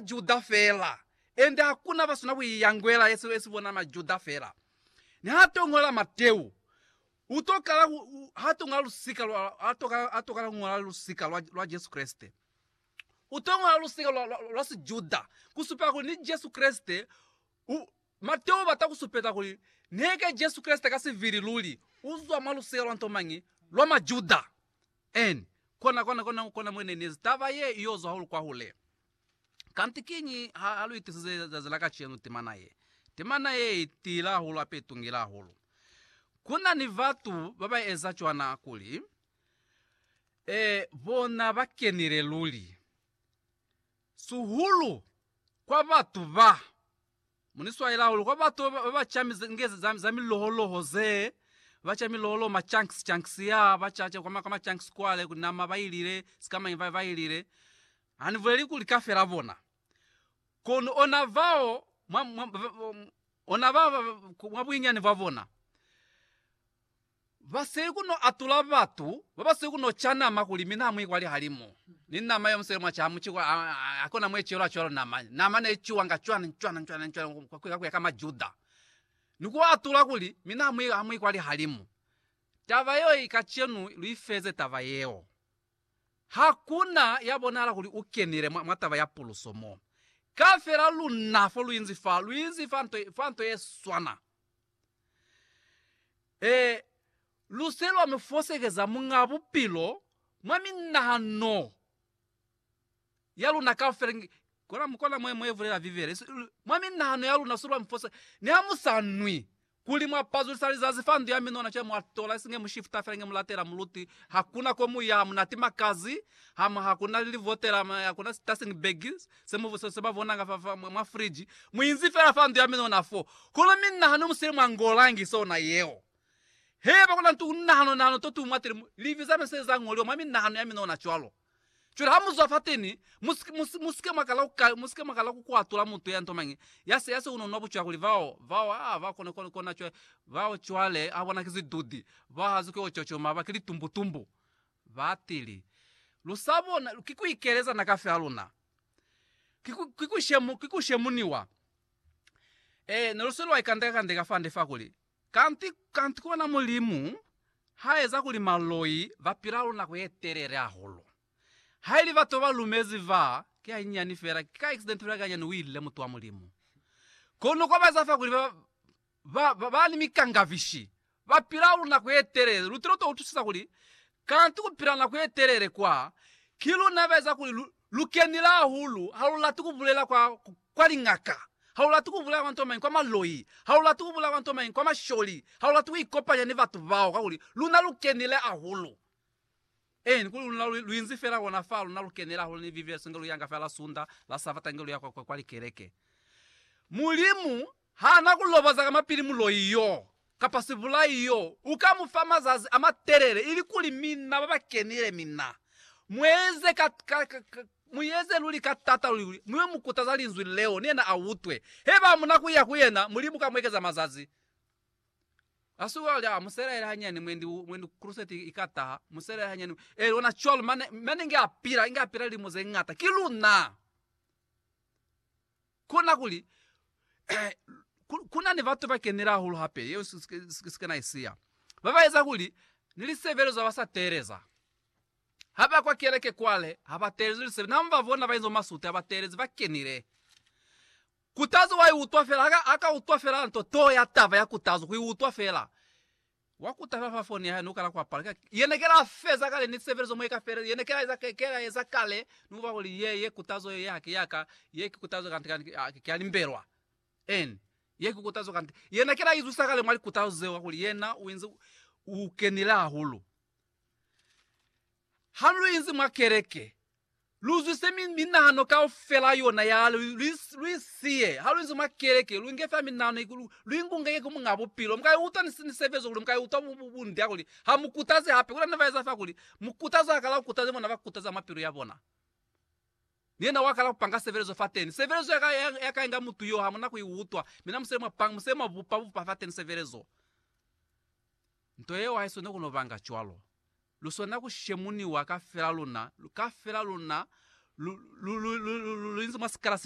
Majuda fela, ende hakuna basina kuiyangwela yesi yesi bona Majuda fela. Niha to ngola Mateu, uto kala ku ha to ngola lusika lwa ha to ha to kala ngola lusika lwa lwa Jesu Kreste. Uto ngola lusika lwa, lwa, lwa Sijuda kusupela kuli ni Jesu Kreste. U, Mateu ubata kusupeta kuli neke Jesu Kreste ka sivili luli uzwa mwa lusika lwa nto mañi? Lwa Majuda. Eni, kona, kona, kona, kona mwenenezi taba ye iyozwa hahulu kwahule. Kanti kiñi ha, ha lu itisize zazi la kacenu timana ye, timana ye i tiile hahulu, hape i tungile hahulu. Ku na ni batu ba ba eza cwana kuli, ee, bona ba kenile luli, sihulu kwa batu ba Mo ni swaela hahulu kwa batu ba ba ca nge za, za miloholoho ze ba ca miloholoho ma chunks chunks ya ba ca ca kwa ma, kwa ma chunks kwale ku nama ba ilile sikamañi ba, ba ilile hani buleli kuli ka fela bona kono ona vao mwa, mwa, ona ba, mwa buinyani bwa bona Ba sili ku no atula batu ba ba sili ku no ca nama kuli mina ha mu ikwali halimu ni nama yo musele mwa ca mu ciko. Ha, ha, ha ku na mwe cwelwa cwalo nama. Nama ne i cuwanga cwana, cwana, cwana, cwana ku, ku, ku ya ka Majuda. Ni ku atula kuli, Mina ha mu, ha mu ikwali halimu. Taba yeo i kacenu lu i feze taba yeo. Ha ku na ya bonahala kuli u kenile mwa, mwa taba ya puluso mo. Kafela luna fo lu inzi fa, lu inzi fa nto, fa nto ye swana. Ee, lu se lwa mi fosekeza Muñaa Bupilo mwa minahano ya luna kaufela. Nge, kona, kona mwe, mwe bulela Bibele. Su, mwa minahano ya luna su lwa mi fose. Niha mu sa nwi, kuli mwa pazulisa lizazi fa ndu ya minona, cwale mwa tola esi nge mu shifta fela, nge mu latela muluti. Hakuna ko mu ya, ha mu na timakazi, ha mu, hakuna lilivotela, hakuna sitasing bag, Se mu busesa ba bona nga fa, fa mwa, mwa friji. Mu inzi fela fa ndu ya mina ona fo. Kono mi nna ha no mu sile mwa ngo langi, se ona yeo. He ba kona ntu ku nahano, nahano to tu mwatile, mu, livi za no se za ngoliwa mwa minahano ya mina ona cwalo. Cwale ha mu zwa fateni, mu si, mu si, mu sike mwa kala ku ka, mu sike mwa kala ku kwatula mutu ya nto mañi, ya se, ya se uno nwa bucwa kuli bao, bao, aa, bao kona, kona, kona cwale, bao cwale, ha bona ki zidudi, bao ha zwi ki o cocoma, ba ki litumbu-tumbu. Batili. Lu sa bona, ki ku ikeleza na kafi ha luna. Ki ku, ki ku shemu, ki ku shemuniwa. Ee, ne lu se lwa ikandeka-kandeka fande fa kuli, Kanti, kanti ku bona Mulimu ha eza kuli maloi ba pila lu nako ye telele hahulu. Haili batu ba lumezi fa, ki hanyinyani fela, ki ka accident fela ki hanyani, u ile, mutu wa Mulimu. Kono kwa ba eza fa kuli ba, Ba ba ni mikangavishi ba pila lu nako ye telele. Lu tilo to utusisa kuli kanti ku pila nako ye telele kwa, ki luna ba eza kuli lu, lu kenile ahulu. Ha lu lati ku bulela kwa, kwa liñaka. Ha lu lati ku bulela kwa ntomañi kwa maloi. Ha lu lati ku bulela kwa ntomañi kwa masholi. Ha lu lati ku ikopanya ni batu bao, kakuli luna lu kenile ahulu. Ee, ni kuli luna lu, lu inzi fela kona fa luna lu kenela hahulu ni Vivi yaswinge lu yanga fela la Sunda, la Sabata nge lu ya kwa, kwa, kwa likeleke. Mulimu ha na ku loboza ka mapili muloi yoo, kapa sibulai yoo, u ka mu fa mazazi a matelele, ilikuli mina ba ba kenile, mina. Mu eze ka, ka, ka, ka, mu eze luli ka taata luli, kuli, mu yo mu kutaza Linzwi leo, ni yena a utwe. Haiba ha mu na ku ya ku yena, Mulimu ka mu ekeza mazazi. Asuka ulya, muselaele hanyani mwendi, mwendi crusade ika taha, muselaele hanyani. E eh, lona cwalo, mane, mane nge apila, nge apila lilimo ze ngata. Ki luna! Kona kuli, eh, kuna ni batu ba kenile hahulu hape, yeo sike na isiya. Ba ba eza kuli, ni lisebelezo ha ba sa teeleza. Ha ba kwa keleke kwale, ha ba teelezi lisebelezo. Na ba bona ba inzo masute, ha ba teelezi, ba kenile. Kutazo wa i utwa fela, aka, aka utwa fela nto too ya taba ya kutazo, ku i utwa fela. Wa kuta fela fa foni ya hae, ni ku kala kwa pala. Ye ne ke la feza kale ni sebelezo mo i ka feleza, ye ne ke la eza, ke la eza kale, ni kuba kuli ye, ye kutazo ye, ye haki ya ka, ye ki kutazo kante, kante, a, ki ya limbelwa. Amen. Ye ki kutazo kante. Ye ne ke la izwisa kale mwa likutazo zeo, kakuli yena u inzi u kenile hahulu. Ha lu inzi mwa keleke, lu zwise minahano kaufela yona ya hae, lu i siye. Ha lu inzi mwa keleke, lu nge fela minahano ye, lu i ngunge ye ku Muñaa Bupilo. Mu ka i utwa ni sebezo kuli mu ka i utwa bunde ya kuli ha mu kutazi hape. Kuna ni ba eza fa kuli mu kutazi ha kala ku kutaza ni bona ba kutaza mwa pilu ya bona. Ni yena wa kala ku panga sebelezo fateni. Sebelezo ya ka, ya ka inga mutu yo, ha mu na ku i utwa. Mina musele mwa panga, musele mwa bupa, bupa fateni sebelezo. Nto yeo haiswana kuno banga cwalo. Luswana ku shemuniwa kafela luna, kafela luna lu, lu, lu, lu, lu, lu, lu inzi mwa sikala se